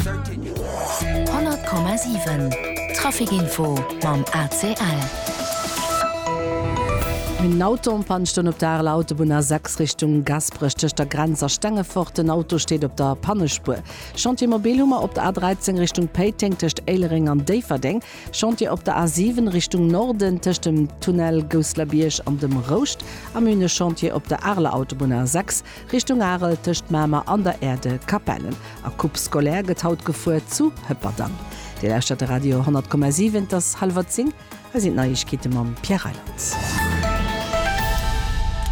100,7 Trafic-Info mam ACL. En Auto am Panne stoung op der Areler Autobunn A6 Richtung Gasperech tëscht der Grenz a Stengefort. Den Auto steet op der Pannespuer. Chantier mobil hu mer op der A13 Richtung Péiteng tëscht Éilereng an Déifferdeng. Chantier op der A7 Richtung Norden tëscht dem Tunnel Gousselerbierg an dem Rouscht. A mir hunn e Chantier op der Areler Autobunn A6. Richtung Arel tëscht Mamer an der Aire de Capellen. A Coupe scolaire gëtt haut gefuer zu Hëpperdang. Dir lauschtert de Radio 100,7, et ass hallwer 10, hei sinn d'Neiegkeete mam Pierre Reyland.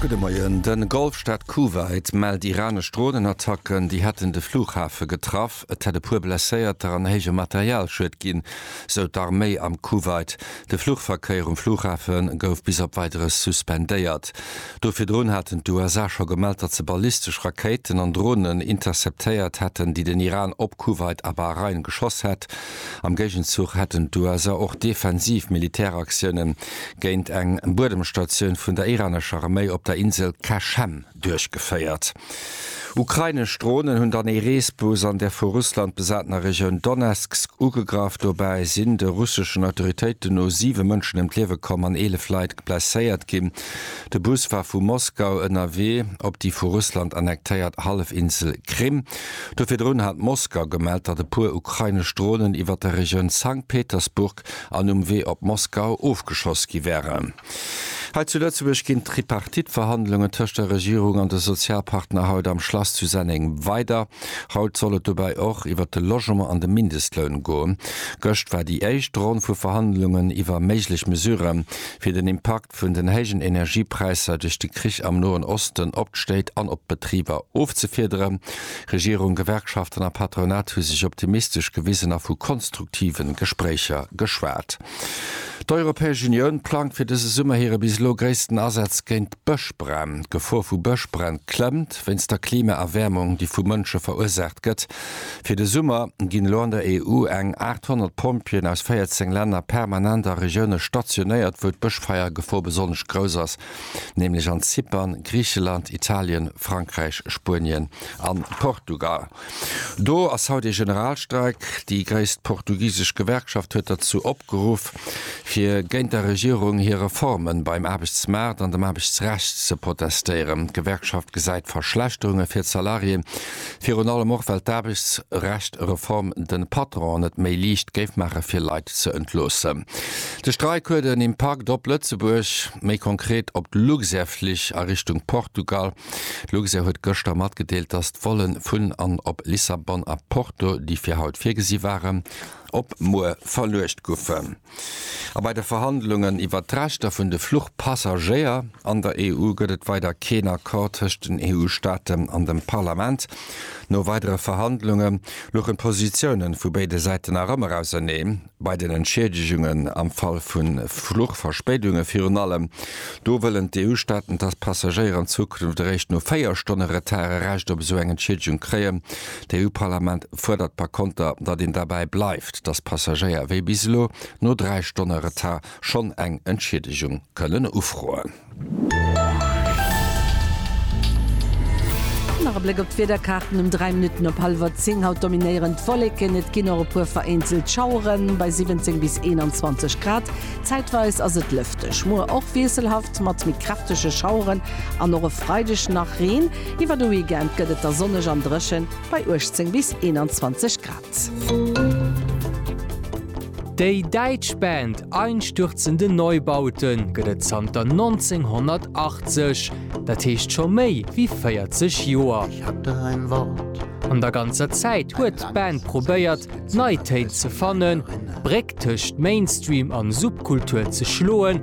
Gudde Moien, De Golfstaat Kuwait mellt iranesch Dronenattacken, déi hätten de Flughafe getraff. Frapp. Et hätt e puer Blesséierter an héije Materialschued ginn, sou d'Arméi am Kuwait. De Fluchverkéier um Flughafe gouf bis op Weideres suspendéiert. Do virdrun haten d'USA scho gemellt, datt se ballistesch Rakéiten an Dronen interceptéiert hätten, déi den Iran op Kuwait a Bahrain geschoss hätt. Am Géigenzuch hätten d'USA och defensiv Militäraktiounen géint eng Buedemstatioun vun der iranescher Arméi op der Insel Qashem duerchgeféiert. Ukrainesch Dronen hunn dann ee Reesbus an der vu Russland besatener Regioun Donezksk ugegraff. Dobäi sinn, de russeschen Autoritéiten no, siwe Mënschen ëm d'Liewe komm an 11 Leit blesséiert ginn. De Bus war vu Moskau ënnerwee op déi vu Russland annektéiert Hallefinsel Krim. Do virdrun hat Moskau gemellt, datt e puer ukrainesch Dronen iwwer der Regioun Sankt Petersburg an um Wee op Moskau ofgeschoss gi wären. Hei zu Lëtzebuerg ginn d'Tripartite-Verhandlungen tëscht der Regierung an de Sozialpartner haut am Schlass zu Senneng weider. Haut soll et dobäi och iwwert de Logement an de Mindestloun goen. Gëscht war déi éischt Ronn vu Verhandlungen iwwer méiglech Mesurë fir den Impakt vun den héijen Energiepräisser duerch de Krich am Noen Osten op d'Stéit an op d'Betriber ofzefiederen. Regierung, Gewerkschaften a Patronat hu sech optimistesch gewisen a vu konstruktive Gespréicher geschwat. D'Europäesch Unioun plangt fir dëse Summer hire bis elo gréissten Asaz géint Bëschbränn. D'Gefor vu Bëschbränn klëmmt, wéinst der Klimaerwäermung, déi vu Mënsche verursaacht gëtt. Fir de Summer ginn elo an der EU eng 800 Pompjeeën aus 14 Länner permanent a Regioune stationéiert, wou d'Bëschfeiergefor besonnesch grouss ass, nämlech an Zypern, Griicheland, Italien, Frankräich, Spuenien a Portugal. Do ass haut ee Generalstreik. Déi gréisst portugisesch Gewerkschaft huet derzou opgeruff, fir géint der Regierung hir Reformen beim Aarbechtsmaart an dem Aarbechtsrecht ze protestéieren. D'Gewerkschaft gesäit Verschlechterunge fir d'Salarié, virun allem och well d'Aarbechtsrecht-Reform de Patronen et méi liicht géif maache fir Leit ze entloossen. De Streik huet en Impakt op Lëtzebuerg, méi konkret op d'Luxair-Flich a Richtung Portugal. D'Luxair huet gëschter matgedeelt, datt d'Vollen vun an op Lissabon a Porto, déi fir haut virgesi waren, op muer verluecht goufen. A bei de Verhandlungen iwwert d'Rechter vun de Fluchpassagéier an der EU gëtt et weider keen Accord tëscht den EU-Staaten an dem Parlament. No weidere Verhandlunge louchen d'Positiounen vu béide Säiten nach ëmmer auserneen. Bei den Entschiedegungen am Fall vu Fluchverspéidunge virun allem, do wëllen d'EU-Staaten, dass d'Passagéier an Zukunft eréischt no véier Stonne Retard e Recht op esou eng Entschiedegung kréien. D'EU-Parlament fuerdert par konter, datt een derbäi bleift, dass d'Passagéier, wéi bis elo, no dräi Stonne Retard schonn eng Entschiedegung kënnen ufroen. Nach e Bléck op d'Wiederkaarten um 3 Minutten op hallwer 10. Haut dominéieren d'Wolleken, et ginn och e puer vereenzelt Schaueren bei 17 bis 21 Grad. Zäitweis ass et lëfteg, muer och wiesselhaft mat méi kräftege Schaueren an och e Freideg nach Reen. Iwwer de Weekend gëtt et da sonneg an dréchen bei 18 bis 21 Grad. Déi däitsch Band Einstürzende Neubauten gëtt et zanter 1980, dat heescht scho méi wéi 40 Joer. An der ganzer Zäit huet d'Band probéiert, nei Téin ze fannen, d'Bréck tëscht Mainstream an Subkultur ze schloen,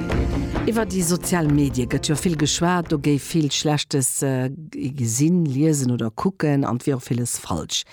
Iwwer déi sozial Medie gëtt jo vill geschwat. Do géif vill Schlechtes gesinn, liesen oder kucken an et wier och villes falsch.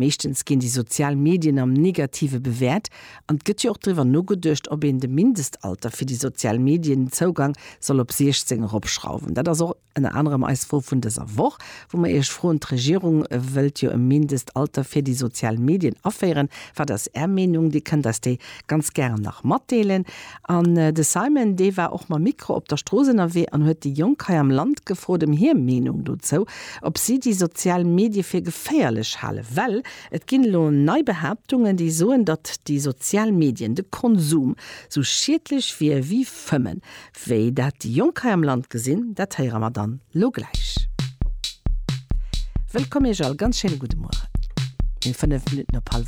Meeschtens ginn déi sozial Medien am Negative bewäert an et gëtt jo och driwwer nogeduecht, ob een de Mindestalter fir déi sozial Medien-Zougang soll op 16 eropschrauwen. Dat ass och. Ënner anerem eis Fro vun dëser Woch, wou mer Iech froen, D'Regierung wëllt jo e Mindestalter fir déi sozial Medien aféieren. Wat ass Är Meenung? Dir kënnt eis déi ganz gären nach matdeelen. An de Simon, dee war och mam Mikro op der Strooss ënnerwee an huet déi Jonk hei am Land gefrot ëm hir Meenung dozou, ob si déi sozial Medie fir geféierlech halen. Well et ginn elo nei Behaaptungen, déi soen, datt déi sozial Medien, de Konsum, sou schiedlech wier wéi Fëmmen. Wéi dat déi Jonk hei am Land gesinn, dat héiere mer dann lo gläich. Wëllkomm Iech all, ganz schéine gudde Mueren. Mir hunn 5 Minutten op hallef 8.